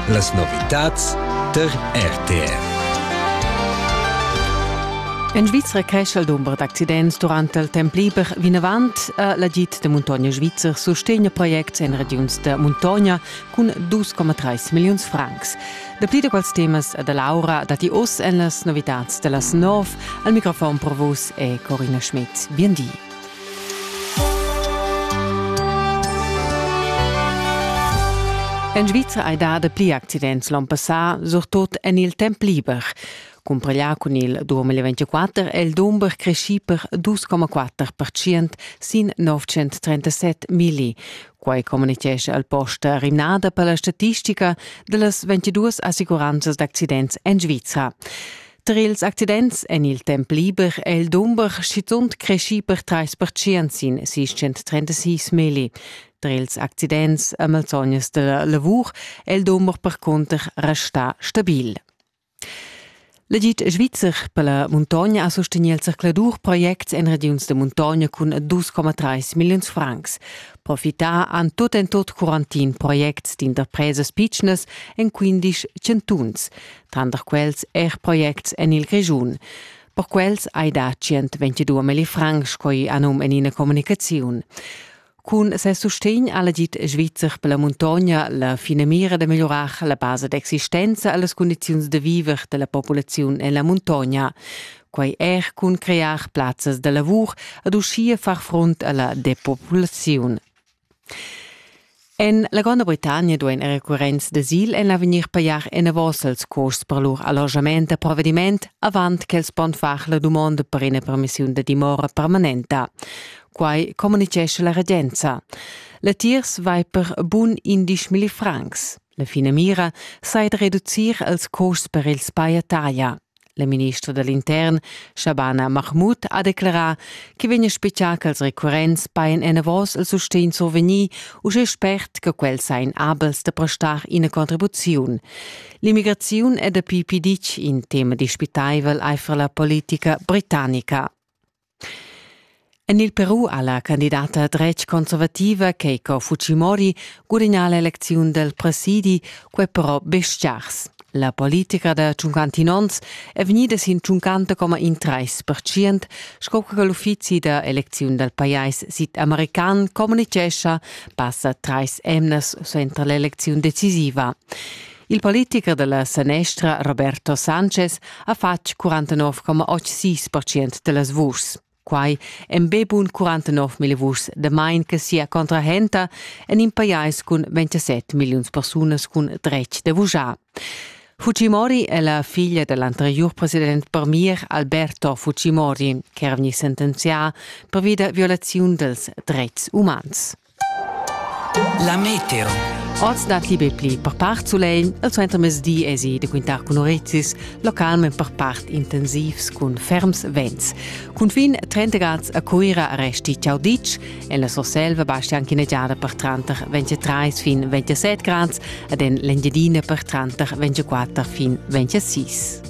Las novitads tar RTR. En Svizra cresce il dumber d'accidents durante il temp liber vinavant. Eh, L'agid de Muntogna Svizzer sustegna projects en regiuns de Muntogna cun 2,3 milliuns francs. Dapli da quels temas e da Laura datti oz en las novitads de las 9. Al microfon pro vus è Corina Schmidt. Bien di. En Svizra hai dà dapli accidents l'on passà, surtut en il temp liber. Cumpraglià cun il 2024 è il dumber creschì per 2,4% sin 937 milli. Quai communitgescha al posta rimnada per la statistica da las 22 assicuranzas d'accidents en Svizra. Tra ils accidents en il temp liber è il dumber schizunt creschì per trais pertschient sin 636 milli. Tra ils accidents a malsognas della lavur è il dumber percunter restà stabil. L'agid svizzer per la muntogna ha sostegni il zercladur projects en regiuns de muntogna cun 2,3 milliuns francs. Profità han tut en tot quarantin projects d'interpresas pitschnas en 15 chantuns. tranter quels er projects en il Grischun. Per quels hai dà 122 milli francs, sco anum en ina communicaziun. Cun ses sustegn ha dit Svizzer per la muntogna la finamira da migliurar la basa d'existenza e las condizions da viver della popolazione en la muntogna. Quai er cun crear plazzas da lavur ed uschia far front alla depopulazione. En la Gronda Britannia duain er recurrents d'asil en l'avegnir pajar enavos els custs per lur allojament da provediment avant ch'els pon far la dumonda per ina permissiun da dimora permanenta. Quai communitgescha la regenza. Latiers vai per bun indisch milli francs. La finamira sai reducir els custs per ils paiataglia. La ministra da l'intern, Shabana Mahmoud, ha declarà che vegn a speziar che els recurrents paien enavos il sustegn survegnì uschè spert che quels sain abels da prestar ina contribuziun. L'immigraziun è dapi piditg in tema dispitaivel aifer la politica britannica. En il Peru ha la candidata dretg-conservativa Keiko Fujimori gudagnà l'elecziun dal presidi, quai però be stgars. La politica da tschuncantinons è vegnida sin tschuncanta coma in trais percient, sco che l'uffizi da elecziun dal pajais sidamerican communitgescha passa trais emnas suenter l'elecziun decisiva. Il politicher dalla sanestra Roberto Sanchez ha fatg 49,86% dellas vuschs. Quai en be bun 49 mil vuschs damain che sia contrahenta en in pajais cun 27 milliuns persunas cun dretg de vuschar. Fujimori è la figlia dell'anterior president per mir Alberto Fujimori, che era vegnì sentenzià per via da violaziun dels dreits umans. La meteo. Oz dat liber pli per part sulegl, il suentermezdi esi de quintar cun orezis, localment per part intensivs cun ferms vents. Cunfin 30 grad a Cuira resti ciao ditg, en la Surselva basti anche negiada per tranter 23 fin 27 grad ed en l'Engiadina per tranter 24 fin 26.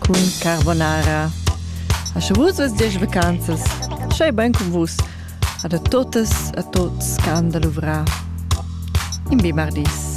cun Carbonara. A sche vus vus diesch vacanzas, schei bein cun vus a da totas a tots che han da luvrar. In bi mardis.